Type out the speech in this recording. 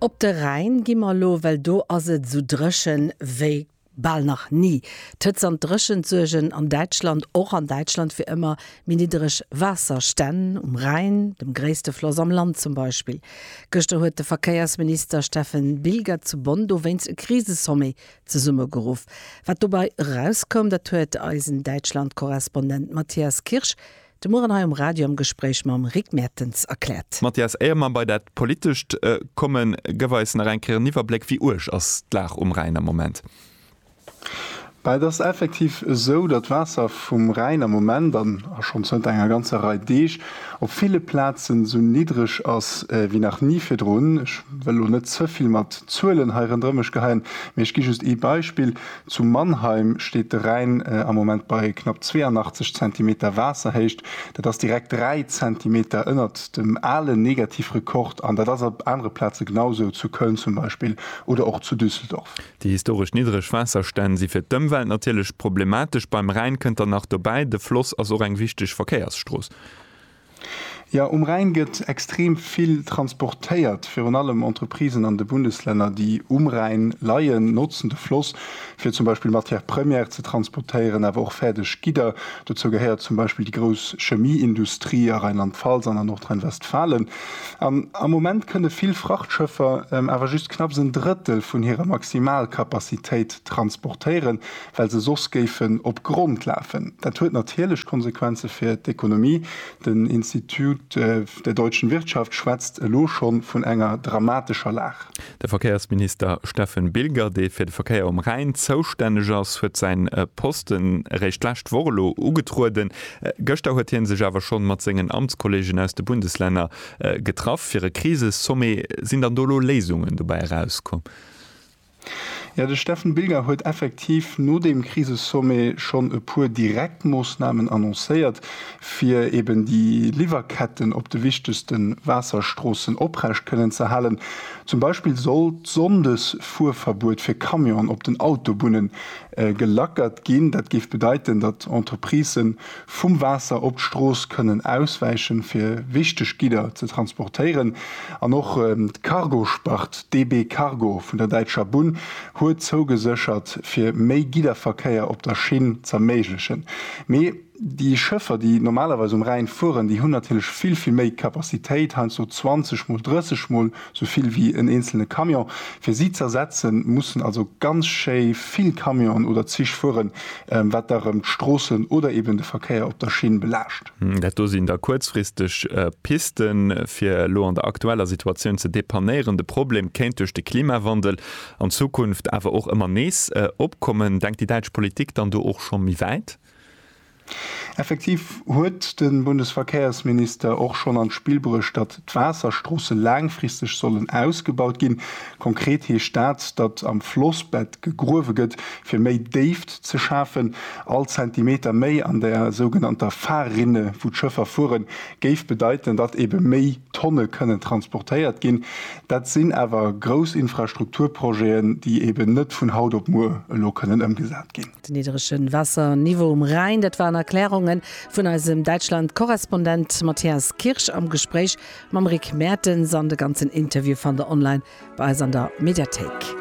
Op de Rhäin gi mer elo, well do ass et esou dréchen wéi bal nach ni. D'Hëtzt an d'Dréchent suergen an Däitschland, och an Däitschland, fir ëmmer méi niddereg Waasserstänn, um Rhäin, dem gréisste Floss am Land zum Beispill. Gëschter huet de Verkéiersminister Steffen Bilger zu Bonn dowéinst e Krisesommet zesummegeruff. Wat dobei erauskoum, dat huet eisen Däitschlandkorrespondent Matthias Kirsch De Mueren hei um Radio am Gespréich mam Rick Mertens erkläert. Mathias, éier mer bei dat Politescht kommen, gëff eis nach eng Kéier en Iwwerbléck, wéi uerg ass d'Lag um Rhäin am Moment? Mä et ass effektiv esou, datt d'Waasser vum Rhäin am Moment an a schonn zënter enger ganzer Rei Deeg op ville Plazen esou niddreg ass wéi nach ni virdrun. Ech wëll elo net ze vill mat Zuelen hei rëndrëm mech geheien, mee ech gi just ee Beispill, Zu Mannheim steet de Rhäin am Moment bei knapp 82 Zentimeter Waasserhéicht. Dat ass direkt 3 Zentimeter ënnert dem alen Negativrekord an dat ass op anere Plaze genau esou, zu Köln zum Beispill oder och zu Düsseldorf. Déi historesch niddreg Waasserstänn si fir d'Ëmwelt natierlech problematesch. Beim Rhäin kënnt dann nach dobäi, de Floss ass och eng wichteg Verkéiersstrooss. Jo, um Rhäin gëtt extrem vill transportéiert. Virun allem Entreprisen an de Bundeslänner, déi um Rhäin leien, notzen de Floss, fir zum Beispill Matières premières ze transportéieren, awer och fäerdeg Gidder. Dozou gehéiert zum Beispill déi grouss Chemieindustrie a Rheinland-Pfalz an a Nordrhein-Westfalen. An am Moment kënne vill Frachtschëffer awer just knapps en Drëttel vun hirer Maximalkapazitéit transportéieren. well se soss géifen op Grond lafen. Dat huet natierlech Konsequenze fir d'Ekonomie. Den Institut der deutschen Wirtschaft schwätzt elo scho vun enger dramatescher Lag. De Verkéiersminister Steffen Bilger, dee fir de Verkéier um Rhäin zoustänneg ass, huet säi Posten eréischt d'lescht Woch elo ugetrueden. Gëschter huet hie sech awer schonn mat sengen Amtskollegen aus de Bundeslänner getraff fir e Krisesommet. Sinn dann do elo Léisungen dobäi erauskomm? Jo, de Steffen Bilger huet effektiv no deem Krisesommet schonn e puer direkt Moossnamen annoncéiert, fir eben déi Liwwerketten op de wichtegste Waasserstroossen oprecht kënnen ze halen. Zum Beispill soll d'Sonndes-Fuerverbuet fir Camionen op den Autobunne gelackert ginn. Dat géif bedeiten, datt Entreprisë vum Waasser op d'Strooss kënnen auswäichen, fir wichteg Gidder ze transportéieren. An och d'Cargospart DB Cargo vun der Däitscher Bunn huet zougeséchert, fir méi Gidderverkéier op der Schinn z'erméiglechen. Mee déi Schëffer, déi normalerweis um Rhäin fueren, déi hunn natierlech vill, vill méi Capacitéit, heiansdo 20 mol, 30 mol. Sou vill wéi en eenzelne Camion. Fir si z'ersetzen, mussen also ganz schéi vill Camionen oder Zich fueren, wat da rëm d'Stroossen oder eben de Verkéier op der Schinn belaascht. Dat do sinn da kuerzfristeg Pisten, fir elo an der aktueller Situatioun ze depannéieren. De Problem kéint duerch de Klimawandel an Zukunft awer och ëmmer nees opkommen. Denkt déi däitsch Politik dann do och scho méi wäit? Effektiv huet de Bundesverkehrsminister och schonn an d'Spill bruecht, datt d'Waasserstroosse laangfristeg sollen ausgebaut ginn. Konkret heescht dat, datt am Flossbett gegruewe gëtt, fir méi Déift ze schafen. All Zentimeter méi an der sougenannter Fahrrinne, wou d'Schëffer fueren, géif bedeiten, datt ebe méi Tonne kënnen transportéiert ginn. Dat sinn awer grouss Infrastrukturprojeten, déi eben net vun haut op muer elo kënnen ëmgesat ginn. Den niddrege Waasserniveau um Rhäin, dat waren Erklärunge vun eisem Däitschland-Korrespondent Matthias Kirsch am Gespréich mam Rick Mertens an de ganzen Interview fannt der online bei eis an der Mediathéik.